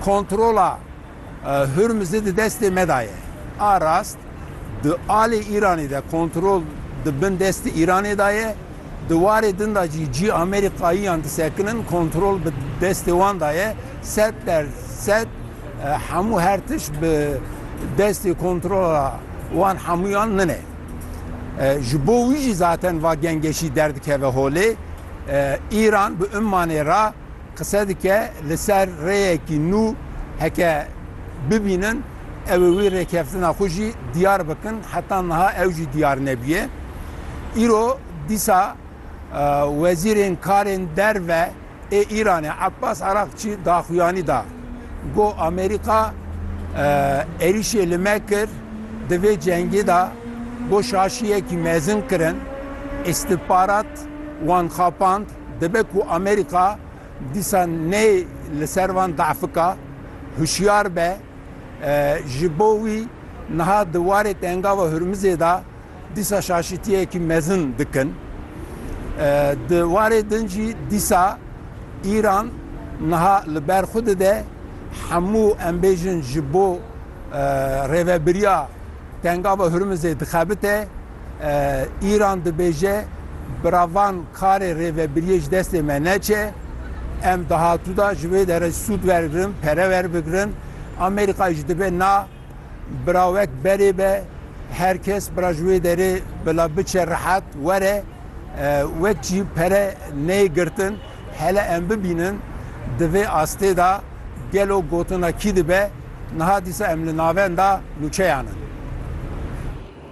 Kontrola Hurmizê di destê me de ye. A rast di alê Îranê de kontrol di bin destê Îranê de ye, di warê din de jî cî Amerîkayiyan disekinin kontrol bi destê wan de ye. Sed der sed hemû her tişt bi destê kontrola wan hemûyan min e. Ji bo wî jî zaten va gengeşî derdikeve holê. Îran bi ummanê re. Qise dike li ser rêyekî nû heke bibînin ew ê wî rêkeftina xwe jî diyar bikin heta niha ew jî diyar nebûye. Îro dîsa wezîrên karên derve ê Îranê Abbas Araqçî daxuyanî da got Amerîka êrîşê li me kir di vê cengê de got şaşiyekî mezin kirin, îstihbarat wan xapand. Dibe ku Amerîka dîsa nê li ser van dahfika hişyar be. Ji bo wî niha di warê Tengava Hurmizê de dîsa şaşîtiyekî mezin dikin. Di warê din jî dîsa Îran niha li ber xwe dide hemû em bêjin ji bo rêvebiriya Tengava Hurmizê dixebite. Îran dibêje, Bi ra van karê rêvebiriyê ji destê me neçe. Em dahatû de ji vê derê sûd wergirin, pere werbigirin. Amerîka jî dibe na bi ra wek berê be. Her kes bi ra ji wê derê bila biçe rehet were. Wek jî pere neyê girtin. Hele em bibînin di vê astê de gelo gotina kî dibe. Niha dîsa em li navenda nûçeyan in.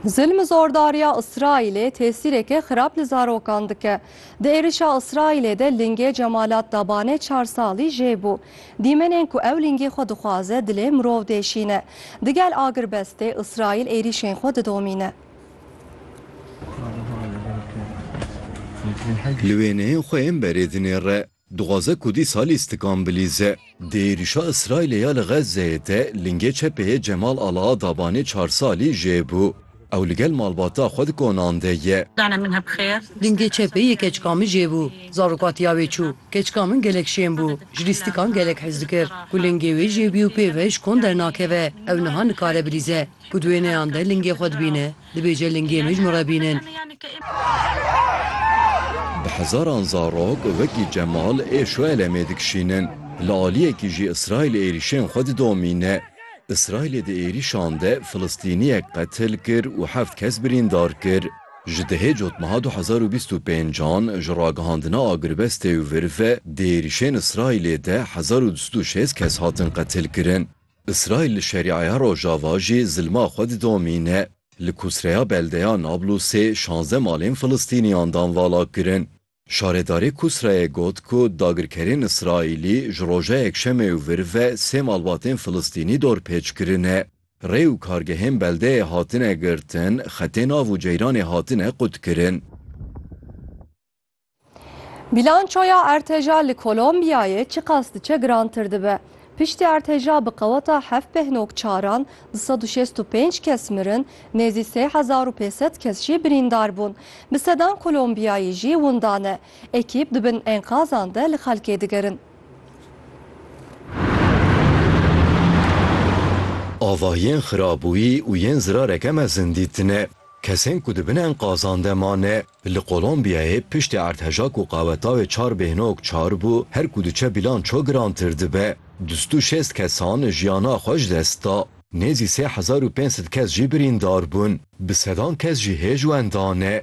Zilm û zordariya Îsraîlê tesîreke xirab li zarokan dike. Di êrişa Îsraîlê de lingê Cemalat Dabanê çar salî jê bû. Dîmenên ku ew lingê xwe dixwaze dilê mirov deşîne. Digel agirbestê Îsraîl êrîşên xwe didomîne. Li wêneyên xwe yên berê dinêre. Dixwaze ku dîsalî stikan bilîze. Di êrîşa Îsraîlê ya li Xezzeyê de lingê çepê yê Cemal Alaadabanê çar salî jê bû. Ew li gel malbata xwe di konan de ye. Lingê çepê yê keçika min jê bû. Zaroka tiya wê çû. Keçika min gelek şên bû. Ji lî stikan gelek hez dikir. Ku lingê wê jê bû û pê ve ji kon dernakeve. Ew niha nikare bilîze. Ku di wêneyan de lingê xwe dibîne. Dibêje lingê min ji min re bînin. Bi hezaran zarok wekî Cemal ê Şuelemê dikişînin. Li aliyekî jî Îsraîl êrîşên xwe didomîne. Îsraîlê di êrîşan de Filistîniyek qetil kir û heft kes birîndar kir. Ji dehê cotmeha du hezar û bîst û pênc an ji ragihandina agrbestê û vir ve di êrîşên Îsraîlê de hezar û du sed û şêst kes hatin qetilkirin. Îsraîl li Şerîaya Rojava jî zilma xwe didomîne. Li Kusreya beldeya Nablusê şazdeh malên Filistîniyan dan valakirin. Şaredarê Kusreyê got ku dagirkerên Îsraîlî ji roja Yekşemê û vir ve sê malbatên Filistînî dorpêç kirine. Rê û kargehên beldeyê hatine girtin, xetên av û ceyranê hatine qutkirin. Bîlançoya erteja li Kolombiyayê çiqas diçe girantir dibe. Piştî erteja bi qeweta heft pêh nok çaran du sed û şêst û pênc kes mirin, nêzî sê hezar û pênc sed kes jî birîndar bûn. Bi sedan Kolombiyayî jî winda ne. Ekîp di bin enqazan de li xelkê digerin. Ava yên xirabûyî û yên zirareke mezin dîtine. Kesên ku di bin enqazan de mane Li Kolombiyayê piştî erdheja ku qawetawê çar bêhnog çar bû, her ku diçe bîlan ço girantir dibe. Du sed û şêst kesan jiyana xwe ji dest da. Nêzî sê hezar û pênc sed kes jî birîndar bûn. Bi sedan kes jî hêj wenda ne.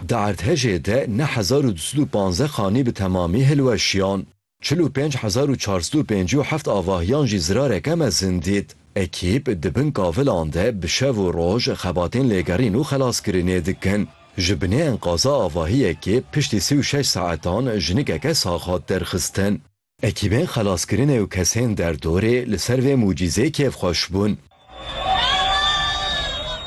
Di erdhejê de neh hezar û du sed û panzdeh xanî bi temamî hilweşiyan. Çil û pênc hezar û çar sed û pêncî û heft avahiyan jî zirareke mezin dît. Ekîp di bin kavilan de bi şev û roj xebatên lêgerîn û xelaskirinê dikin. Ji binê enqaza avahiyekê piştî sî û şeş saetan jinikeke sax hat derxistin. Ekîbên xelaskirinê û kesên derdorê li ser vê mucîzê kêfxweş bûn.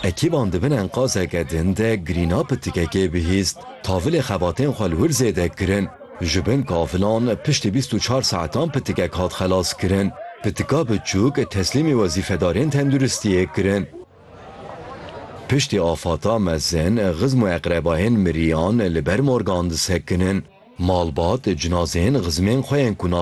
Ekîban di bin enqazeke din de girîna pitikekê bihîst. Tavilê xebatên xwe li wir zêde kirin. Ji bin kavilan piştî bîst û çar saetan pitikek hat xelaskirin. Pitika biçûk teslîmî wezîfedarên tenduristiyê kirin. Piştî afata mezin xizm û eqrebayên miriyan li ber morgan disekinin. Malbat cinazeyên xizmên xwe yên ku